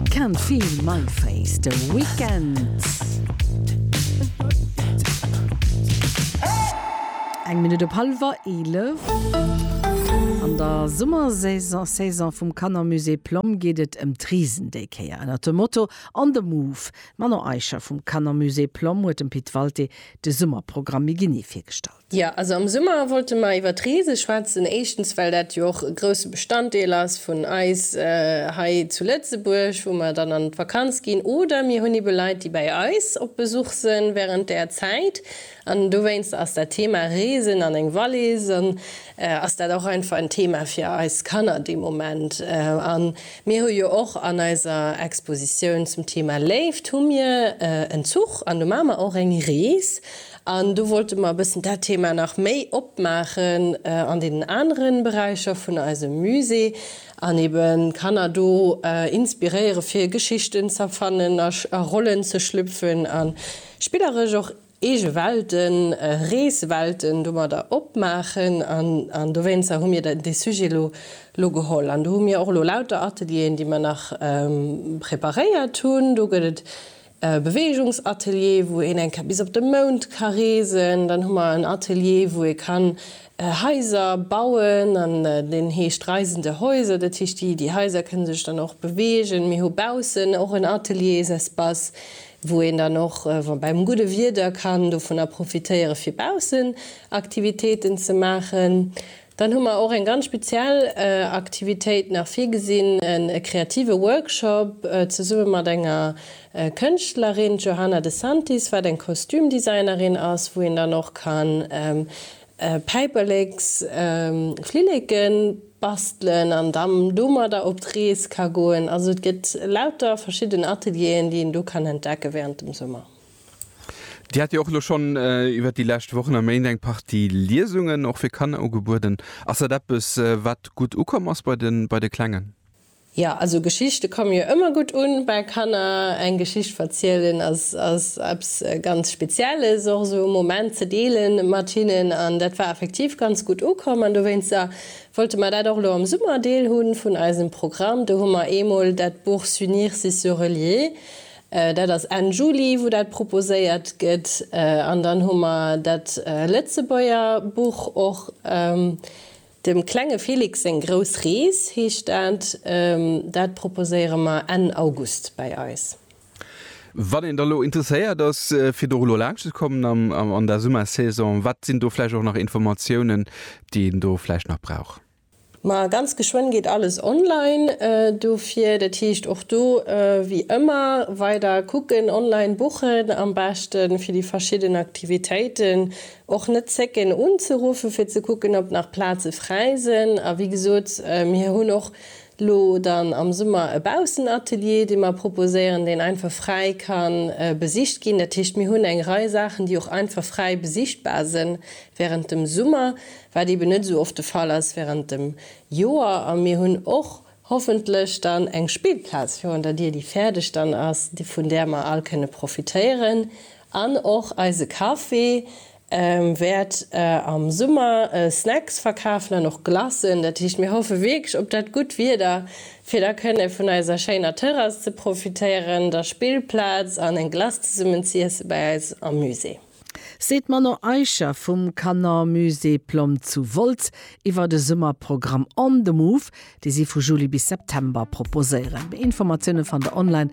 Can't feel my face, The Weeknd. Eng Minutt op hallwer 11. An der Summersaison Saison vum Kannermusée Plomm geet et ëm d'Risen déi Kéier. Ënnert dem Motto On the Move, D'Manon Eicher vum Kannermusée Plomm huet dem Pit Walté de Summerprogramm méi genee virgestallt. Jo, also am Summer wollte mer iwwer d'Reese schwätzen. Éischtens, well dat jo och e grousse Bestanddeel ass vun eis hei zu Lëtzebuerg, wou mer dann an d'Vakanz ginn. Oder mir hunn ebe Leit, déi bäi eis op Besuch se wärend där Zäit. An dowéinster ass dat Thema Reesen an eng Wallis an ass dat och einfach en Thema fir eis Kanner dee Moment. A mir hu jo och an eiser Expositioun zum Thema Léift hu mir en Zuch an do maache mer och eng Rees. An do wollte mer e bëssen dat Thema nach méi opmaachen an deenen anere Beräicher vun eisem Musée an eben d'Kanner do inspiréiere fir Geschichten z'erfannen, a Rollen ze schlüpfen a spilleresch och eege Welten, Reeswelten domadder opmaachen. An dowéinster hu mir dee Sujet elo geholl. An do hu mir och elo lauter Atelieren, déi mer nach preparéiert hunn. Do gëtt et e Beweegungsatelier, wou een eng Kéier bis op de Mound ka reesen, dann hu mer en Atelier, wou ee kann Haiser bauen, an deen heescht Reisende Häuser, dat heescht, déi déi Haiser kënne sech dann och beweegen. Mir hu baussen och en Ateliers-Espace, wou een dann och beim gudde Wieder kann dovunner profitéieren, fir baussen Aktivitéiten ze maachen. Dann hu mer och eng ganz speziell Aktivitéit nach virgesinn, e kreative Workshop zesumme mat enger Kënschtlerin, d'Johanna de Santis, wat eng Kostümdesignerin ass, wou een dann och ka Päiperleks, Flilleke bastelen an dann domadder op d'Rees ka goen. Also et gëtt lauter verschidden Atelieren, déi een do kann entdecke während dem Summer. Dir hat jo och elo schonn iwwert déi lescht Wochen a Méint eng Partie Liesungen och fir Kanner ugebueden. Ass dat eppes, wat gutt ukomm ass bei de Klengen? Jo, also Geschichte komme jo ëmmer gutt u bei Kanner. Eng Geschicht verzielen ass eppes ganz Spezielles, och esou e Moment ze deele mat hinnen. An dat war effektiv ganz gutt ukomm an dowéinster wollte mer dat och elo am Summer Deel hu vun eisem Programm. Do hu mer eemol dat Buch S'unir, c'est se relier Dat ass Enn Juli, wou dat proposéiert gëtt. An dann hu mer dat Lëtzebuerger Buch och, Dem klenge Felix seng grouss Rees heescht dat. Dat proposéiere mer Enn August bei eis. Wann een da lo interesséiert ass, fir do elo laanscht ze kommen an der Summersaison, wat sinn do vläicht och nach Informatiounen, déi een do vläicht nach brauch? Ma ganz geschwënn geet alles online dofir. Dat heescht och do wéi ëmmer weider kucken, online buchen am beschte fir déi verschidden Aktivitéiten. Och net zécken unzeruffe fir ze kucken, ob nach Plaze fräi sinn. A wéi gesot, mir hunn och lo dann am Summer e Baussenatelier, dee mer proposéieren, deen einfach fräi ka besicht ginn. Dat heescht, mir hunn eng Rei Saachen, déi och einfach fräi besichtbar sinn wärend dem Summer. wat eben net esou oft de Fall ass während dem Joer, a mir hunn och hoffentlech dann eng Spillplaz virun der Dier, déi fäerdeg dann ass, vun där mer all kënne profitéieren an och eise Café wäert am Summer Snacks verkafen an och Glacen. Dat heescht, mir hoffe wierklech op dat gutt Wieder, fir da kënne vun eiser schéiner Terrass ze profitéieren, der Spillplaz an eng Glace zesummen z'iessen bei eis am Musée. seet d'Manon Eicher vum Canon Musée Plom zu Wolz iwwer de Summerprogramm On the Move, dee si vu Juli bis September proposéieren. Méi Informatioune fannt der online.